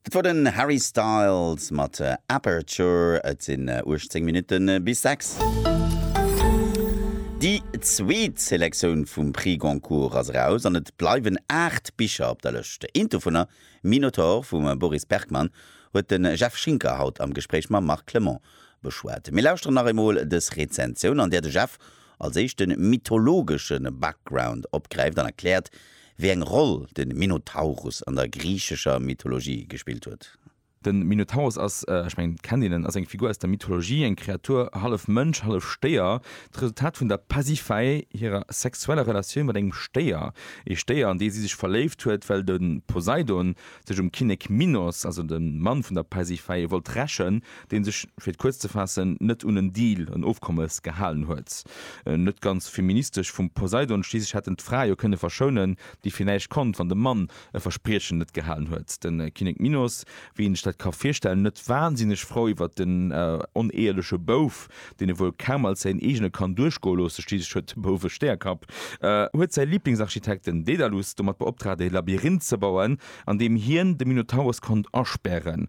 Dat wor den Harry Styles mat Aperture. Et sinn 18 Minutten bis 6. Déi zweet Selektioun vum Prix Goncourt ass eraus an et bleiwen 8 Bicher op der Lëscht. Eent dovunner, Minotaur vum Boris Bergmann, huet de Jeff Schinker haut am Gespréich mam Marc Clement beschwat. Mir lauschteren nach eemol dës Rezensioun, an där de Jeff als éischte mythologesche Background opgräift an erkläert, wéi eng Roll de Minotaurus an der griichescher Mythologie gespillt huet. De Minotaurus ass, ech mengen et kennt een en, ass eng Figur aus der Mythologie, eng Kreatur hallef Mënsch, hallef Stéier, d'Resultat vun der Pasiphaë, hirer sexueller Relatioun mat engem Stéier. Ee Stéier an dee si sech verléift huet, well de Poseidon sech um Kinnek Minos, also dem Mann vun der Pasiphaë, wollt rächen, dee sech, fir et kuerz ze faassen, net un en Deal, en Ofkommes, gehalen huet. Net ganz feministesch vum Poseidon, schliisslech hätt en d'Fra jo kënne verschounen, déi fir näischt konnt, wann de Mann e Verspriechen net gehalen huet. De Kinnek Minos, wéi een sech dat ka virstellen, net wansinneg frou iwwer den oneeheliche Bouf, deen e wuel kaum als säin eegene kann duerchgoe loossen, schliisslech huet de Bouf e Stäerkapp, huet säi Liblingsarchitekt, den Daedalus, domat beoptraagt, e Labyrinth ze bauen, an deem hien de Minotaurus konnt aspären,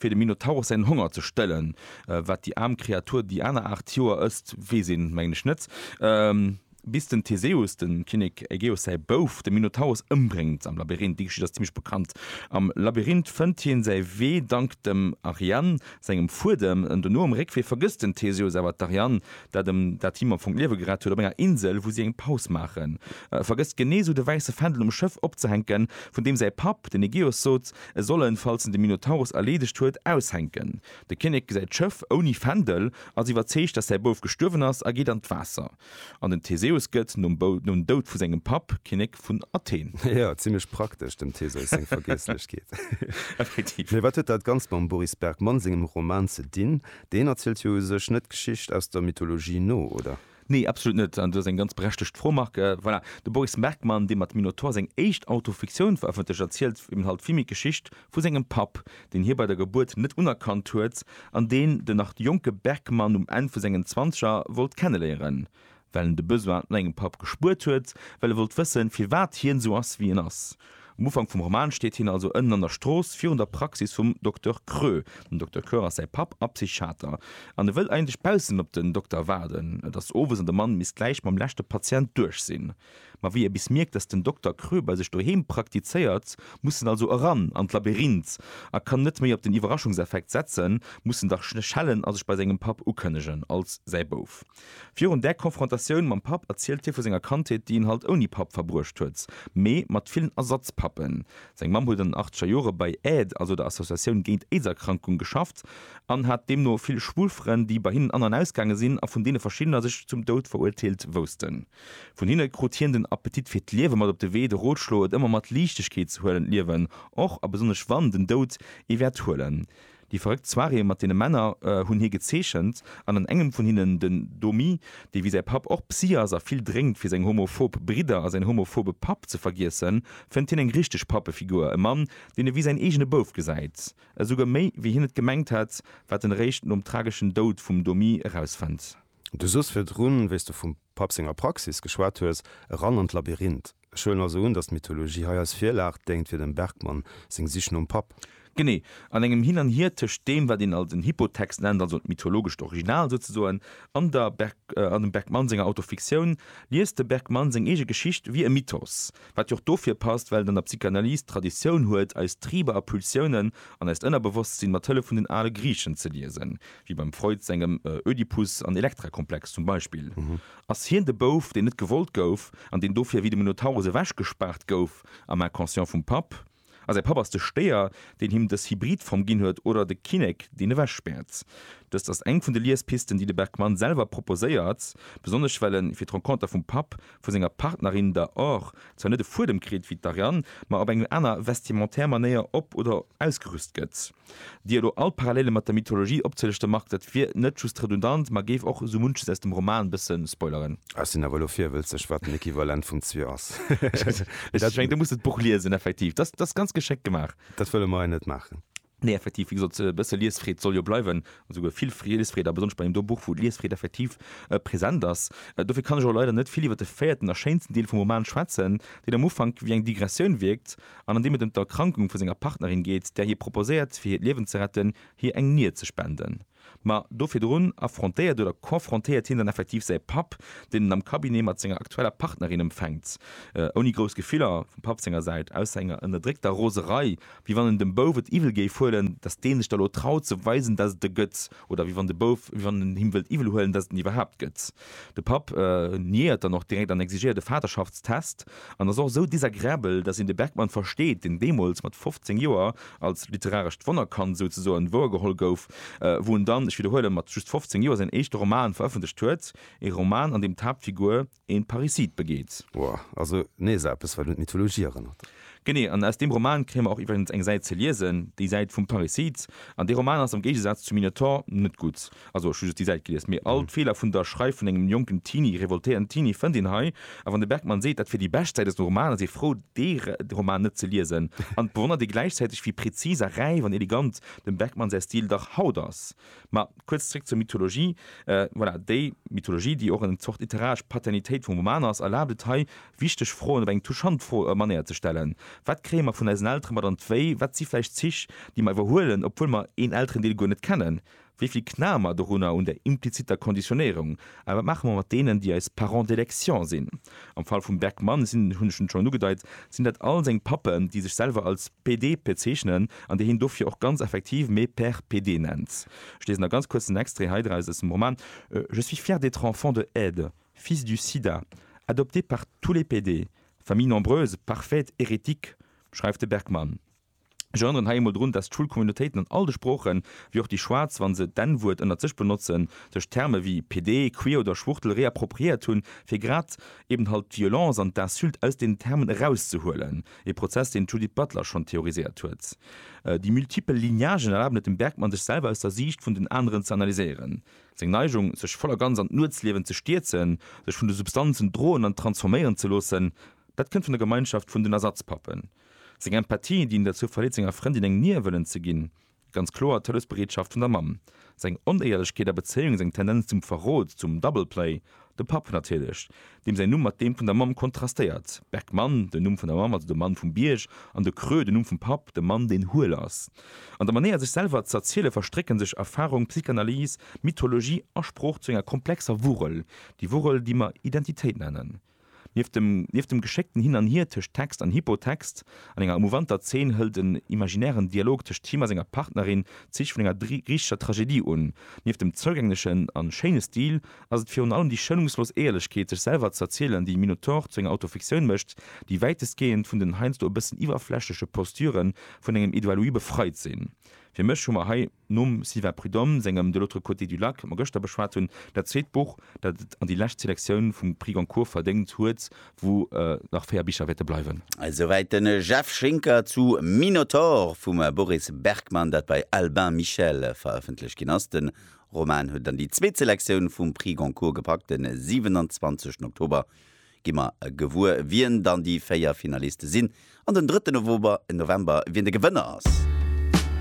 Fir dem Minotaurus säin Honger ze stëllen, wat déi aarm Kreatur déi aner aacht Joer ësst, weess een, mengen ech, net, bis den Theseus, dem Kinnek Ägeus säi Bouf, de Minotaurus ëmbréngt am Labyrinth. Déi Geschicht ass zimmlech bekannt. Am Labyrinth fënnt hien säi Wee dank dem Ariane sengem Fuedem. Dono um Réckwee vergësst den Theseus awer d'Ariane, dat dat him am Fong d'Liewe gerett huet. Op enger Insel, wou si eng Paus maachen, vergësst genee esou de wäisse Fändel um Schëff opzehänken, vun deem säi Papp, den Ägeus, sot, E soll en, falls en de Minotaurus erleedegt huet, aushänken. De Kinnek gesäit d'Schëff ouni Fändel, ass iwwerzeegt, datt säi Bouf gestuerwen ass a geet an d'Waasser. An den Theseus gëtt, nom Doud vu sengem Papp, Kinnek vun Athen. Jo, zimlech praktesch, dem Theseus seng Vergiesslechkeet. Effektiv. Mee wat huet dat Ganzt mam Boris Bergmann sengem Roman ze dinn? Deen erzielt jo u sech net d'Geschicht aus der Mythologie no, oder? Nee, absolut net. An do ass eng ganz berechtegt Fromarke. Voilà, de Boris Merkmann, dee mat Minotaur seng éischt Autofiktioun verëffentlecht, erzielt eben halt vill méi d'Geschicht vu sengem Papp, deen hie bei der Gebuert net unerkannt huet an deen den nach jonke Berkman um Enn vu sengen Zwanzeger wollt kenneléieren, well en de Besoin no engem Papp gespuert huet, well e wollt wëssen, firwat hien esou ass, wéi en ass. Um Ufank vum Roman steet hien also ënnen an der Strooss, virun der Praxis vum Dokter Krö. Den Dokter Krö ass säi Papp a Psychiater. An e wëll eigentlech baussen op den Dokter waarden. Et ass owes an de Mann misst gläich mam leschte Patient duerch sinn. Ma wéi e bis mierkt, datt den Dokter Krö bei sech doheem praktizéiert, muss en also eran an d'Labyrinth a kann net méi op den Iwwerraschungseffekt setzen, muss en dach schellen a sech bei sengem Papp ukënnegen als säi Bouf. Virun där Konfrontatioun mam Papp erzielt hie vu senger Kandheet, déi en halt ouni Papp verbruecht huet, mee mat villen Ersatzpappen. Seng Mamm huet an den achteger Jore bei AID, also der Associatioun géint d'Aidserkrankung, geschafft an hat deemno vill schwul Frënn, déi bei hinnen an an ausgaange sinn a vun deene verschiddener sech zum Doud veruerteelt woussten. Vun hinne krut hien den Appetit fir d'Liewe mat op de Wee, de Rotschlo, et ëmmer mat Liichtegkeet ze huelen, d'Liewen, och a besonnesch wann, den Doud ee wäert huelen. Déi verrëckt Soirée mat deene Männer hunn hie gezeechent an an engem vun hinnen den Domi, dee wéi säi Papp och Psy ass a vill drénkt fir seng homophob Bridder a säin homophobe Papp ze vergiessen, fënnt hien eng richteg Pappefigur, e Mann, deen e wéi säin eegene Bouf gesäit. Esouguer méi wéi hien et gemengt hätt, wat en eréischt nom trageschen Doud vum Domi erausfënnt. Du soss virdrun, wéi s du vum Papp senger Praxis geschwat hues, eran an d'Labyrinth. Ech huelen also un, datt d'Mythologie hei als Virlag déngt fir dem Bergmann seng Sich nom Papp. Genee. An engem Hin an Hier tëscht deem, wat een als en Hypotext nennt, also d'mythologescht Original souzesoen, an der an dem Bergmann senger Autofiktioun, liest de Bergmann seng eege Geschicht wéi e Mythos. Wat jo och dofir passt, well et an der Psychanalyse d'Traditioun huet, eis Triber a Pulsiounen an eist Ënnerbewosstsinn mat Hëllef vun den ale Griichen ze liesen, wéi beim Freud sengem Ödipus an Elektra-Komplex zum Beispill. Ass hien de Bouf, deen net gewollt gouf an deen dofir wéi de Minotaurus ewechgespaart gouf am Inconscient vum Papp? A säi Papp ass de Stéier, deen him dës Hybridform ginn huet oder de Kinnek, deen ewechspäert? Dëst ass eng vun de Liespisten, déi de Bergman selwer proposéiert, besonnesch well en, fir d'Renconter vum Papp, vu senger Partnerin, der Or, zwar net e Fuedem kritt, wéi d'Ariane, ma op eng aner vestimentaire Manéier op oder ausgerüst gëtt. Dir elo all Parallele mat der Mythologie opzelischten, Marc, dat wier net just redundant, ma géif och esou munches aus dem Roman bësse spoileren. Ah, ech sinn awer elo virwëlzeg, wat den Equivalent vum Zwier ass. Ech mengen, du muss et d'Buch liesen, effektiv. Dat ass ganz geschéckt gemaach. Dat wëlle mer hei net maachen. Nee, effektiv, wéi gesot, e bësse Liesfreed soll jo bleiwen, esouguer vill Liesfreed, a besonnesch bei engem do Buch, wou d'Liesfreed effektiv present ass. Dofir kann ech och leider net vill iwwer de véierten a schéinsten Deel vum Roman schwätzen, deen am Ufank wéi eng Digressioun wierkt, an an deem et ëm d'Erkrankung vu senger Partnerin geet, där hie proposéiert, fir hiert Liewen ze retten, hir eng Nier ze spenden. Ma do virdrun affrontéiert oder confrontéiert hien dann effektiv säi Papp, deen en am Cabinet mat senger aktueller Partnerin empfänkt, ouni grouss Gefiller vum Papp senger Säit, ausser enger ënnerdréckter Roserei, wéi wann en dem Bouf et iwwel géif huelen, datt dee sech da lo traut ze weisen, datt et e gëtt, oder wéi wann de Bouf, wéi wann en him wëllt iwwel huelen, datt et en iwwerhaapt gëtt. De Papp niéiert dann och direkt an exigéiert e Vaterschaftstest an ass och esou désagréabel, dass een de Bergman versteet, deen deemools mat 15 Joer als literarescht Wonnerkand souzesoen wouergeholl gouf, wou en dann, ech widderhuelen, mat just 15 Joer säin éischte Roman verëffentlecht huet, ee Roman, an deem d'Haaptfigur een Parricide begeet. Woah, also nees eppes, wat un d'Mythologie erënnert. Genee, an aus deem Roman kréie mer och iwwregens eng Säit ze liesen, déi Säit vum Parricide. An dee Roman ass am Géigesaz zum Minotaur net gutt. Also ech hu just déi Säit gelies, mee all d'Feeler vun der Schreif vun engem jonken Teenie, revoltéierten Teenie, fënnt een hei. A wann de Bergmann seet, dat wier déi bescht Säit aus dem Roman, da sief frou, dee Roman net ze liesen. An et bewonnert ee gläichzäiteg, wéi prezis a räif an elegant dem Bergmann säi Stil dach haut ass. Ma kuerz zréck zur Mythologie. Voilà, déi Mythologie, déi och eng Zort literaresch Paternitéit vum Roman ass, erlaabt et hei, wichteg Froen op eng touchant Manéier ze stellen, Wat kréie mer vun eisen Eltere mat an d'Wéi? Wat si vläicht Zich, déi mer iwwerhuelen, obwuel mer een Elterendeel guer net kennen? Wéi vill knae mer dorunner, un der impliziter Konditionéierung? A wat maache mer mat deenen, déi eis Parents d'élection sinn? Am Fall vum Back Mann sinn, hunn ech en schonn ugedeit, sinn dat all seng Pappen, déi sech selwer als PD bezeechnen an déi hien dofir och ganz effektiv mes pères PD nennt. Ech liesen da ganz kuerz en Extrait hei draus aus dem Roman, Je suis fier d'être enfant de Ed, fils du Sida, adopté par tous les PD, famille nombreuse, parfaite, hérétique, schreift de Bergmann. Ech erënneren hei emol drun, dass d'Schoulcommunautéiten an all de Sproochen, wéi och déi Schwaarz, wa se d'N-Wuert ënnert sech benotzen, sech Terme wéi PD, Queer oder Schwuchtel réappropriéiert hunn, fir grad eben halt d'Violence an d'Insulte aus deenen Termen erauszehuelen, e Prozess, deen d'Judith Butler schonn theoriséiert huet. Déi multipel Lignagen erlaben et dem Bergmann, sech selwer aus der Siicht vun den aneren ze analyséieren, seng Neigung, sech voll a ganz an d'Nuetsliewen ze stierzen, sech vun de Substanzen droen an transforméieren ze loossen, dat kënnt vun der Gemeinschaft vun den Ersatzpappen. Seng Empathie, déi en derzou verleet senger Frëndin eng Nier wëllen ze ginn, ganz kloer d'Hëllefsbereetschaft vun der Mamm, seng Onéierlechkeet a Bezéiung, seng Tendenz zum Verrot, zum Double Play, de Papp natierlech, deem säin Numm mat deem vun der Mamm kontrastéiert, Bergmann, den Numm vun der Mamm, also de Mann vum Bierg, an de Creux, den Numm vum Papp, de Mann deen huel ass. An der Manéier sech selwer z'erziele verstrécken sech Erfarung, Psychanalyse, Mythologie a Sprooch zu enger komplexer Wurrel, déi Wurrel déi mer Identitéit nennen. Nieft dem nieft dem geschéckten Hin an Hier tëscht Text an Hypotext, an enger emouvanter Zeen hëlt en imaginären Dialog tëscht him a senger Partnerin d'Zich vun enger griichescher Tragedie un. Nieft dem zougänglechen a schéine Stil ass et virun allem déi schounungslos Éierlechkeet, sech selwer z'erzielen, déi Minotaur zu enger Autofiktioun mécht, déi wäitestgehend vun den heiansdo e bëssen iwwerflächleche Postüre vun engem Edouard Louis befreit sinn. Fir mech hu mer hei. Nom Sylvain Prud'homme sengem De l'autre côté du lac, dat mer gëschter beschwat hunn, dat zweet Buch, dat et an déi lescht Selektioun vum Prix Goncourt verdéngt huet, wou nach véier Bicher wäerte bleiwen. Esouwäit de Jeff Schinker zu Minotaur vum Boris Bergmann, dat bei Albin Michel verëffentlecht ginn ass. De Roman huet et an déi zweet Selektioun vum Prix Goncourt gepackt. De 27 Oktober gi mer gewuer, wien dann déi véier Finaliste sinn, an den 3 November, wien de Gewënner ass.